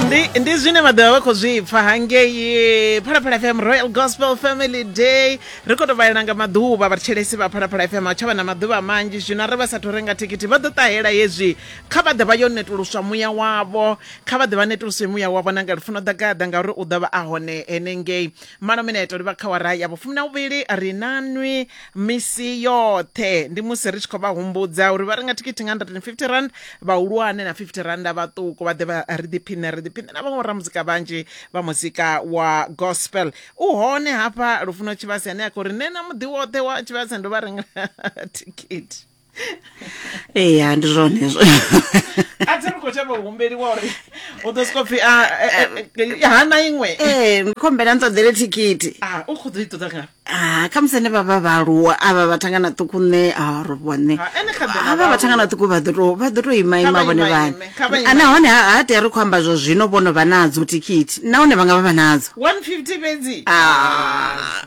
ndi ndi zwine vha ḓovha vha khou zwi pfa hangei phalaphala fm royal gospel family day ri khou tou vhalela nga maḓuvha vhatshelesi vha phalaphala fm a tsha vha na maḓuvha manzhi zwino arali vha sathu renga thikhithi vha ḓo ṱahela hezwi kha vha ḓe vha yo netuluswa muya wavho kha vha ḓe vha netuluswe muya wavho na nga lufuno ḓa gaḓa ngauri u ḓo vha a hone henengei malo mineto livha kha wara ya vhufumi na vhuvhili ri na nwi misi yoṱhe ndi musi ri tshi khou vha humbudza uri vha renga thikhithi nga 150 rand vhahulwane na 50 randa vhaṱuku vha ḓe vha ri ḓiphine ri ḓiphine na vhaṅwe ramuzika vhanzhi vha muzika wa gospel u hone hafha lufuno tshivhase ane a khou ri nṋe na muḓi woṱhe wa tshivhase ndo vha rengela thikhithi ee ya ndi zwone hezwo a thi ri khou tsha vhahumbeliwa uri u ḓo soko pfhi a- e- e- e- hana iṅwe ee ndi khombela ni ṱoḓele thikhithi Ah, u khou ḓo i ṱoḓa nga Ah, khamusi ne vha vha vhaaluwa avha vhathangana ṱuku nṋe a ro vhone Ha, ene kha ḓi na avha vhathangana ṱuku vha ḓo to- vha ḓo to ima Kha ima vha vhone ima vhane ime, kha vha ima. nahone ha ha tea ri khou amba zwa zwino vhono vha nadzo thikhithi nahone vha nga vha vha nadzo 150 fhedzi Ah.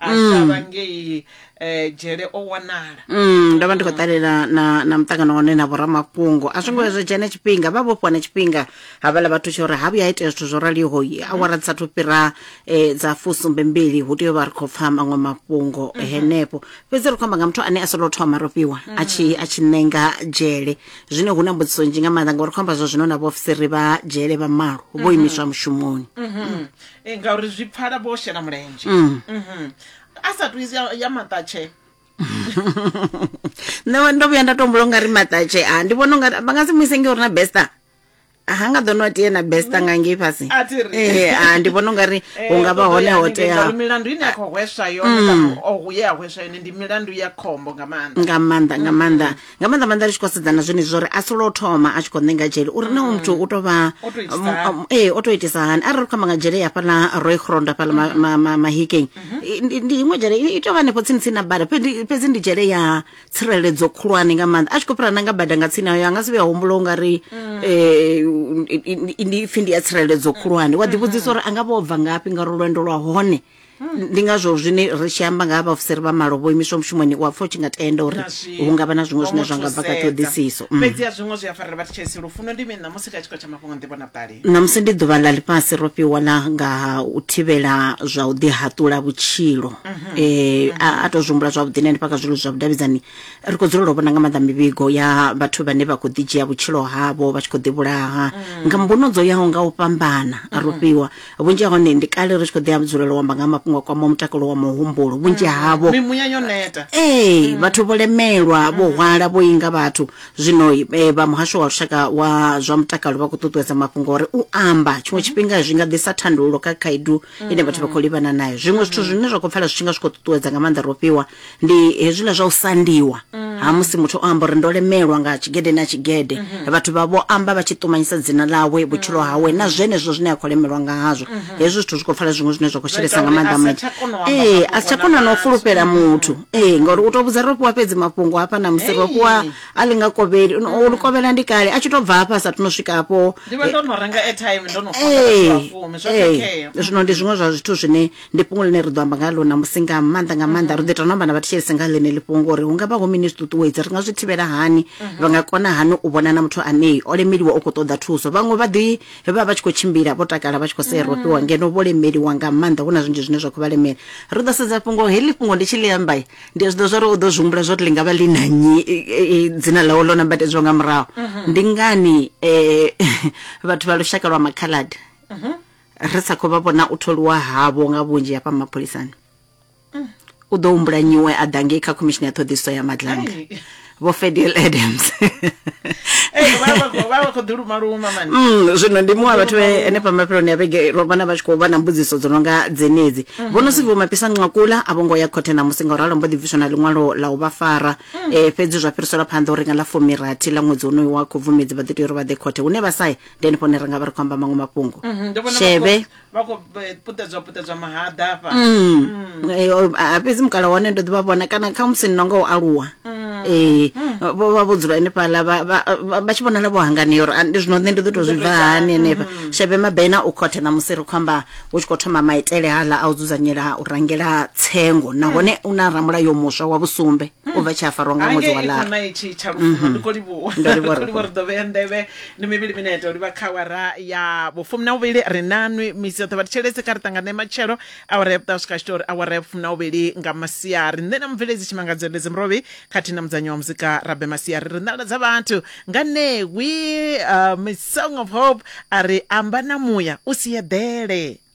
a shavha ngei eh, dzhele o wanala Mm, ndo vha ndi khou ṱalela na na muṱangano hone na vhoramafhungo a zwo ngo vhuya zwa dzhena tshifhinga vha vhofhiwa na tshifhinga havhala vhathu tsha uri ha vhuya ha itea zwithu zwo raliho yi, awara dzi sathu fhira eh, dza fusumbe mbili hu tea u vha ri khou pfa maṅwe mafhungo henefho fhedzi ri khou amba nga muthu ane a solo thoma rofhiwa a tshi a tshi ṋenga dzhele zwine hu na mbudziso nzhi nga maanḓa ngauri khou amba zwa zwino na vhaofisiri vha dzhele vha malo vho imiswa mushumoni Eh, ngauri zwi pfala vho shela mulenzhe Mm. Mhm. a sa tu ya ya maṱatshe nṋe ndo vhuya nda tombula u nga ri maṱatshe a ndi vhona ungari vha nga si muise nge uri na besta ha nga ḓo no tie na besta nga ngei fhasi A thi ri. Eh, a ndi vhona ungari hu nga vha hone ho teaho Mm. milandu ine a khou hweswa yone kana o ye a hweswa yone ndi milandu ya khombo nga maanḓa nga maanḓa nga maanḓa nga maanḓa maanḓa ri tshi khou sedza na zwenezwi zwo ri a si lwa u thoma a tshi khou ṋenga dzhele uri na muthu u tou vha O tou itisa hani? um, ee o tou itisa hani arali ri khou amba nga dzhele ya fhaḽa roy grond afhaḽa ma- ma- ma- mahikeng I- ndi ndi iṅwe dzhele i i tou vha hanefho tsini tsini na bada fhedzi fhedzi ndi dzhele ya tsireledzo khulwane nga maanḓa a tshi khou fhira na nga bada nga tsini ayo a nga si vhuya humbula u nga ri eh, i- i- i- ndi pfhi ndi ya tsireledzo khulwane wa ḓivhudzisa uri a nga vha o bva ngafhi ngauri lwendo lwa hone ndi ngazwo zwine ri tshi amba nga ha vhaofisiri vha malo vho imiswa mushumoni wa pfa u tshi nga tenda uri hu nga vha na zwiṅwe zwine zwa nga bva kha ṱhoḓisiso mm. fhedzi a zwiṅwe zwi a farela vha thetshelesi lufuno ndi mini ṋamusi kha tshiko tsha mafhungo nḓivho na vhuṱali ṋamusi ndi ḓuvha ḽa ḽifhasi ro fhiwa ḽa nga u thivhela zwa u ḓihaṱula vhutshilo um a tou zwi humbula zwavhuḓi na hanefha kha zwilo zwa vhudavhidzani ri khou dzulela u vhona nga maanḓa mivhigo ya vhathu vhane vha khou ḓi dzhia vhutshilo havho vha tshi khou ḓivhulaha mm. nga mbuno dzo yaho nga u fhambana ro mm-hmm. fhiwa vhunzhi ha hone ndi kale ri tshi khou ḓi dzulela u amba nga mafhungo a kwama mutakalo wa muhumbulo vhunzhi mm. havho mimuya yo neta ee mm. vhathu vho lemelwa vho mm. hwala vho inga vhathu zwino eh, vha muhasho wa lushaka wa zwa mutakalo vha khou ṱuṱuwedza mafhungo uri u amba tshiṅwe mm-hmm. tshifhinga zwi nga ḓisa thandululo kha khaidu ine vhathu vha khou livhana nayo zwiṅwe zwithu zwine zwa khou pfala zwi tshi nga zwi khou ṱuṱuwedza nga maanḓa ro fhiwa ndi hezwiḽa zwa u sandiwa ha musi muthu o amba uri ndo lemelwa nga tshigede na tshigede vhathu vha vho amba vha tshi ṱumanyisa dzina ḽawe vhutshilo hawe na zwenezwo zwine a khou lemelwa nga hazwo hezwo zwithu zwi khou pfala zwiṅwe zwine zwa khou shelesa nga uri maanḓa a sa muthu tsha kona u amba ee mafhungo a si tsha na kona na u muthu. fulufhela muthu ee ngauri u tou vhudza ro fhiwa fhedzi mafhungo hafha na musi ro fhiwa Hey. a ḽi nga kovheli u ḽi kovhela ndi kale a tshi tou bva hafha a sa thu no swika hafho ndi vha ndo no renga airtime ndo no fona vhathu ee vha fumi zwo ee khakhea zwino ndi zwiṅwe zwa zwithu zwine ndi fhungo ḽine ri ḓo amba nga ḽo ṋamusi nga maanḓa nga maanḓa ri ḓo ita no amba na vhathetshelesi nga ḽeneli fhungo uri hu nga vha hu mini zwi ṱuṱuwedza ri nga zwi thivhela hani vha nga kona hani u vhona na muthu ane o lemeliwa u khou ṱoḓa thuso vhaṅwe vha ḓi vha vha tshi khou tshimbila vho takala vha tshi khou sea rofhiwa ngeno vho lemeliwa nga maanḓa hu na zwinzhi zwine zwa khou vha lemela ri ḓo sedza fhungo heḽi fhungo ndi tshi ḽi amba ndi a zwi ḓo zwa uri u ḓo zwi humbula zwa uri ḽi nga vha ḽi na nyi e, e, e, dzina ḽawo ḽo nambatedzwa nga murahu ndi ngani um vhathu vha lushaka lwa makhaladi ri sa khou vha vhona u tholiwa havho nga vhunzhi hafha mapholisani u ḓo humbula nyiwe a ḓa ngei kha khomishini ya ṱhoḓisiso ya madlanga Hey. vho fedel adams Hey, vha vha khou- vha vha khou ḓi luma luma mani Mm, zwino ndi muṅwe wa vhathu vhe henefha mafheloni a vhege ro vhona vha tshi khou vha na mbudziso dzo no nga dzenedzi vho no siviwa mapisa nqakula a vho ngo ya khothe namusi nga u ralo mbo ḓi bviswa na ḽiṅwalo la u vha fara Eh, fhedzi zwa fhiriselwa phanḓa uri nga ḽa fumirathi ḽa ṅwedzi wonoyu wa khubvumedzi vha ḓo tea uri vha ḓe khothe hune vha saye ndi henefho hune ri nga vha ri khou amba maṅwe mafhungo Mhm, ndi vhona sheve vha khou eh, puṱedzwa puṱedzwa mahaḓa afha Mm. Eh, o- a- fhedzi mukala wane ndo ḓivha vhona kana kha musi ni nonga u aluwa ee vho vha vho dzula henefhaḽa vha- vha vha- vha tshi vhonala vho hanganea uri ah, ndi zwino nṋe ndi ḓo tou zwi bva hani henefha shebe mabena u khothe na musi ri khou amba hu tshi khou thoma maitele haḽa a u dzudzanyela u rangela tsengo nahone u na ramulayo muswa wa vhusumbe u bva tshi a farwa nga ṅwedzi wa hangei lara khona itshi tsha lufuno ndi khou livhuwa Ndo livhuwa Ndi khou livhuwa ri ḓo vhea nḓevhe ndi mivhili minete u livha kha awara ya vhufumi na vhuvhili ri nanwi misi yoṱhe vha thetshelese kha ri ṱangane matshelo awara ya vhuṱaha swika tshitori awara ya vhufumi na vhuvhili nga masiari nṋe na mubveledzi tshimangadzo ndedzi murovhi khathihi na mudzanyi wa muzika rabe masiari ri nḓala dza vhathu nga ṋewi uh, miss song of hope a ri amba na muya u si eḓele